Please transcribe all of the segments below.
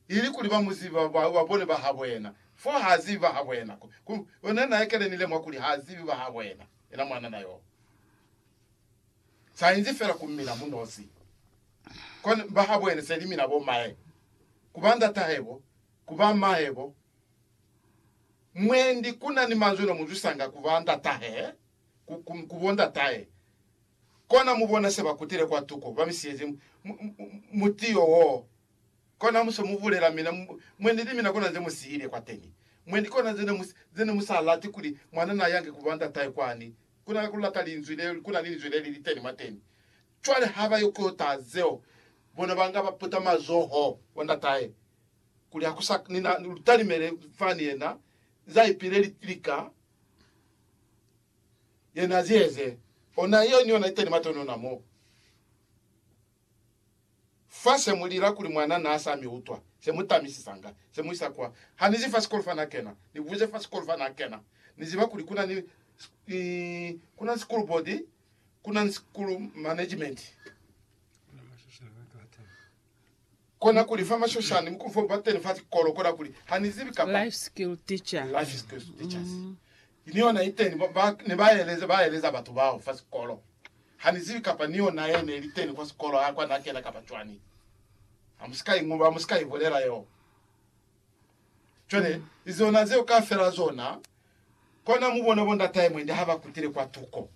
ilikuli ba mu ziba ba ba bone ba habo yena, fo ha zibi ba habo yena. Ku, ku, ku ne na ekele ni lemuha kuli ha zibi ba habo yena, yena mwanana yo. Sa inzi fela ku mina mu nosi. Kwa ne, ba habo yena se li mina bo mae, ku ba ndatahebo, ku ba mahebo. Mwendi ku na ni manzwi no mu zwisanga ku ba ndatahe, ku, ku, ku bo ndatahe. Kona mu bona se ba kutile kwa tuko, ba mi siyezi mutiyo woo. Kona ha mu se mu bulela mina, mwe ni li mina kona ze mu siile kwateni. Mwe ni kona ze ne mu, ze ne mu sa lati kuli mwana na yange ku ba ndatahe kwani, ku na ku lata Linzwi le, ku na ni Linzwi le li li teni mwateni. Cwale ha ba yo ku yo taha zeo, bona ba nga ba puta mazoho kwa ndatahe, kuli ha ku sa ni na lutalimele fani yena, za ipile lika. Yena zieze ona yeo ni yona iteni matono ona mo fa se mu lila kuli mwana na sa mi utwa se mu tamisisanga se mu isa kwa ha ni zi fa sikolo fa na kena ni buze fa sikolo fa na kena ni ziba kuli kuna ni ni kuna ni school board kuna ni school management kona kuli fa mashoshani mukulu fo bateni fa sikolo kona kuli ha ni zibi kapa life skill teacher life skills teachers mm. Ni yona iteni ba ne ba eleza ba eleza batu bao fa sikolo. Ha ni zibi kapa ni yona ye ne li teni kwa sikolo ha kwa na kena kapa cwani. Ha mu si ka ingoba, mu si ka ibulela yo. Cwale, i zona zeo kafela zona, kona mu bona bo ndatahe mwendi ha ba kutile kwa tuko.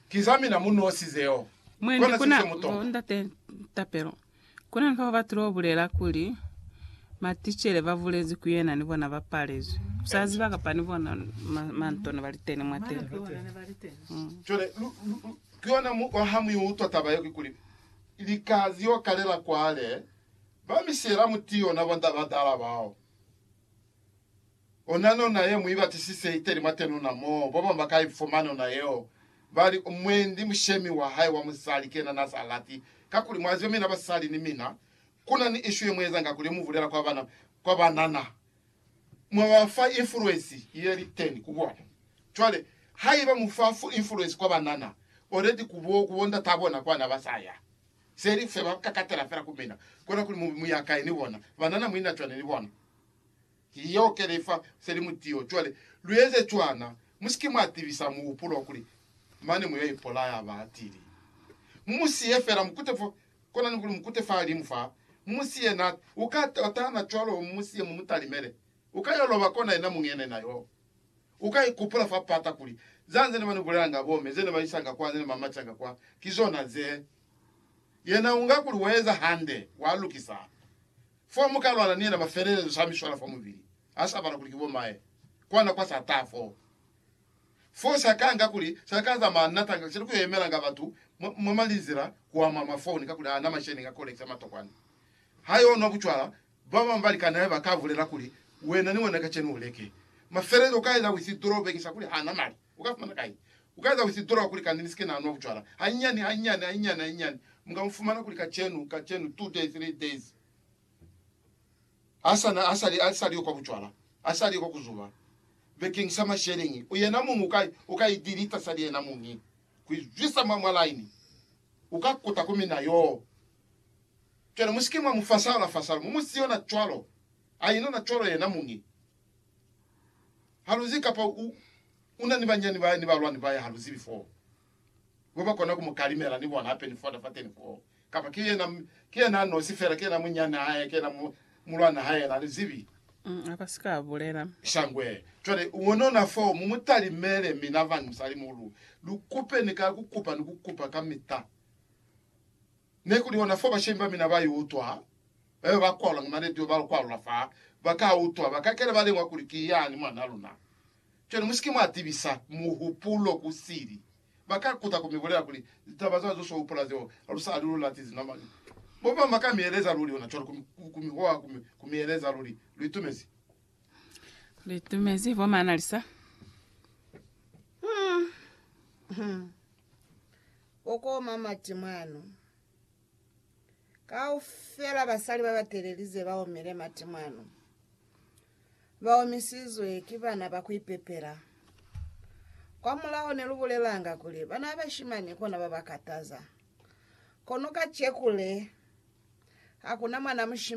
Ki za mina mu nosi zeo. Mwendi Kona kuna se se mu bo tonga. ndate Tapelo. Ku na ni bao ba tilo bulela kuli, Maticele ba bulezi ku yena ni bona ba palezwi. U sa ziba kapa ni bona mantona ba li teni mwateni. Cwale, lu, lu, lu, ki yona mu, ha mu i utwa taba yeo, kikuli, lika li yo kalela kwale, ba misiyela muti yona, bo nda badala bao. Ona nona ye mu ibatisise iteli mwa tenuna moo babamwi ba ka ifuma nona yeo, bali umwendi mushemi wa hae wa musali kena na sa lati. Kakuli mwa ziba mina basali ni mina, kuna ni ishu ye mu ezanga kuli mu bulela kwa bana kwa banana, mwa ba fa influence ye li teni ku bona. Cwale, haiba mu fa influence kwa banana, already ku bo, ku bo ndata bona kwa na ba sa ya. Se li fe ba kakatela fela ku mina, kona kuli mu be mu ya kai ni bona, banana mu ina cwani ni bona? Ki yeo ke li fa se li mu tiyo. Cwale, lu eze cwana, mu si ke mwa tibisa muhupulo wa kuli, Mane mu yo ipolaya batili. Mu mu siye fela, mu kute fo, kona ni kuli mu kute fahalimu fa, mu mu siye na, u ka tatana cwalo, mu mu siye, mu mu talimele. U ka yo loba kona yena muñi yena na yo. U ka ikupula fa pata kuli, Za nze ne ba ni bulelanga bomme, ze ne ba isanga kwa, ze ne ba macanga kwa, ki zona ze. Yena u nga kuli wa eza hande, wa lukisa. Fo muka lwala ni yena mafelelezo sa miswala fa mubili, ha sa bala kuli ki bo maye, kwa nako ha sa taha foo. Foo sa ka nga kuli sa ka za ma natanga kisali ku yo yemelanga batu mwa, mwa malinzila kwa mwa mafoni kakuli ha na masheleñi a ku lekisa matokwani. Ha yo nwa bucwala, ba bañwi ba likani hae ba ka bulela kuli, Wena ni wena kacenu u leke mafelelezo ka yena withidroo bekisa kuli ha na mali. U ka fumana kai? U ka eza withidurowa kuli kani ni sike na nwa bucwala. Hanyinyani, hanyinyani, hanyinyani, hanyinyani, mu ka mu fumana kuli kacenu, kacenu, two days, three days, ha sa na, ha sa li, ha sa li yo kwa bucwala, ha sa li yo kwa ku zuba. Bekeng sa masheleñi, u yena muñi u ka, u ka idilita sali yena muñi, ku izwisa mwa, mwa laini. U ka kuta ku mina yoo. Cwale mu sike mwa mu fasala, fasala. Mu mu siyo na cwalo. A ino na cwalo yena muñi. haluzi kapa u, u na ni banyani bahae ni balwani bahae haluzibi foo, bo ba kona ku mu kalimela ni bona hape ni fota fateni foo, kapa ki yena, ki yena a nosi fela, ki yena munyani hae, ki yena mu, mulwana hae, la li zibi. Mm, a ka si ka bulela. Shangwe. Cwale, ungonona foo, mu mu talimele, mina vanhu musalimuhulu, lu kupe, ni ka ku kupa ni ku kupa kamita, Ne ku li hona fo bashemi ba mina ba i utwa, ba be ba kwalula ki maledi yo ba lu kwalula fa ba ka utwa, ba kakela ba lengwa kuli ki yani mwan'a luna. Cwale mu si ke mwa tibisa muhupulo ku sili. Ba ka kuta ku mi bulela kuli, Litaba z'a zo s'o hupula zeo, ha lu sa li lu lati zinamani. Bo bañwi ba ka mi eleza luli hona cwalo, ku mi hoha, ku mi eleza luli, Lu itumezi. Lu itumezi, bo Mona Lisa. bo koma mati mwanu. Kaufela basali ba batelelize ba omile mati mwanu. Ba omisizwe ki bana ba ku ipepela. Kwa mulaho ne lu bulelanga kuli bana ba bashimani kona ba ba kataza. Kono kacekule, hakuna mwana mushimani yo a ka ipepela.